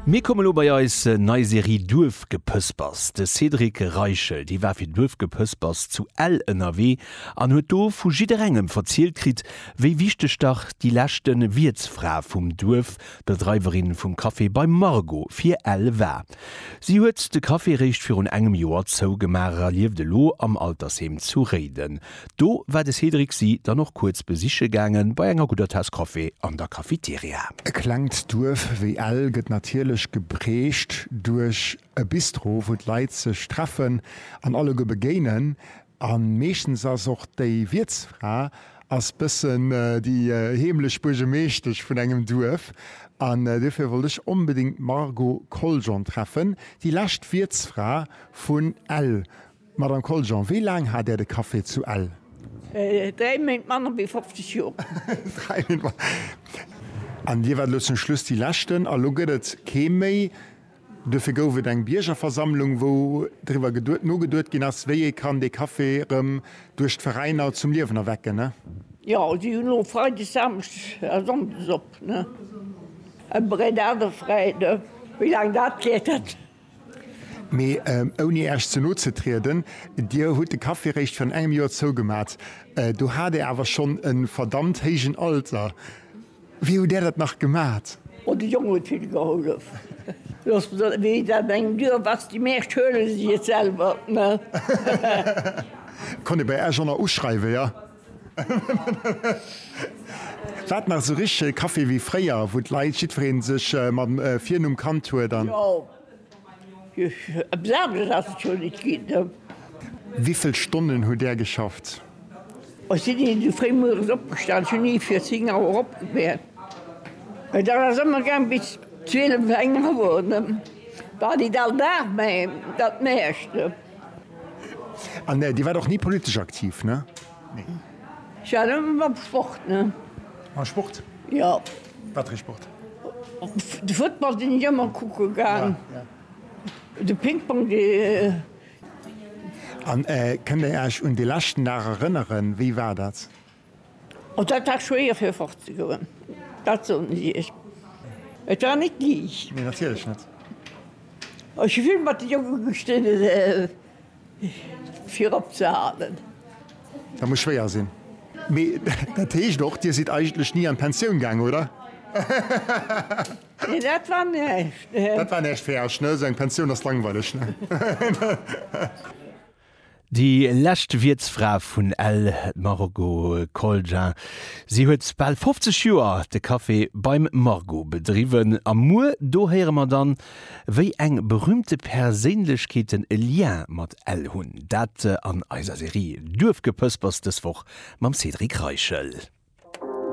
Mir komme lo bei eis nei Serie Duerfgepëspers. De Cédric Reichel, dee war fir Duerfgepëspers zu Ell ënnerwee an huet do vu jidderengem verzielt kritt, wéi wichteg dach déi leschte Wiertsfra vum Duerf, d'Bedreiwerin vum Café Bei Margo, fir Ell war. Si huet de Café réischt virun engem Joer zougemaach a lieft elo am Altersheem zu Réiden. Do war de Cédric si dann och kuerz besiche gaangen, bei enger gudder Taass Kaffi an der Cafeteria. E klengt Duerf wéi Ell gëtt natierlech geprägt duerch e Bistro, wou d'Leit sech treffen an alleguer begéinen. An meeschtens ass och déi Wiertsfra ass bëssen déi heemlech Buergemeeschtesch vun engem Duerf. An dofir wollt ech onbedingt d'Margot Coljon treffen, déi lescht Wiertsfra vun Ell, Madame Koljean, wéi laang hat Är de Café zu Ell? Dräi Méint manner wéi 50 Joer. Dräi Méint manner wéi 50 Joer. An Dir waart elo zum Schluss déi leschten, a lo gëtt et kee méi. Duerfir gouf et eng Biergerversammlung, wou driwwer geduet, nogeduet ginn ass, wéi ee kann dee Café erëm duerch d'Veräiner zum Liewen erwecken. Jo, si hunn elo freides, samschdes a sonndes op. Ëmmer en Ader Freide. Wéi laang dat wäert, dat Mee ouni Äech ze no ze trieden, Dir hutt de Café eréischt virun engem Joer zougemat. Do hat Dir awer schonn e verdammt héijen Alter. Wéi hutt Där dat nach gemat? Oh, de Jong huet vill gehollef. Looss mer soen, wéi et an engem Duerf ass, déi meescht huele si et selwer. Konnt ee bei Äech ënner uschreiwe, jo? War et nach esou richtege Café wéi fréier, wou d'Leit jiddweree sech mam Virnumm kannt huet an. Jo, eppes aneres ass et scho net ginn. Wéivill Stonnen hutt Där geschafft? Ech sinn ni esou fréi mueres opgestan, ech hunn ni fir 10 Auer opgewäert. Mä dat ass ëmmer gaang bis 12, eng Auer, ne? War nit all Dag, mä dat Meeschte. An Dir waart och ni politesch aktiv, ne? Nee. Jo, mam Sport, ne? Mam Sport? Jo. Wat fir ee Sport? De Football sinn ech ëmmer kucke gaang. Ja, ja. De Pingpong, dee. An kënnt Dir Iech un de leschten Dag erënneren? Wéi war dat? Oh, dat war schwéier fir fortzegoen, dat soen ech Iech. Et war net liicht. Nee, natierlech net. Ech hu vill mat de Jonke gestridden, fir opzehalen. Dat muss schwéier sinn. Mee dat heescht och, Dir sidd eigentlech ni an d'Pensioun gaangen, oder? Nee, dat war näischt. Dat war näischt fir Iech, ne? Esou eng Pensioun ass langweileg, ne? Déi lescht Wiertsfra vun Ell, d'Margot Colgin. Si huet bal 50 Joer de Café Beim Margot bedriwwen. A muer do héiere mer dann, wéi eng berühmte Perséinlechkeeten e Lien mat Ell hunn. Dat an eiser Serie Duerfgepëspers dës Woch mam Cédric Reichel.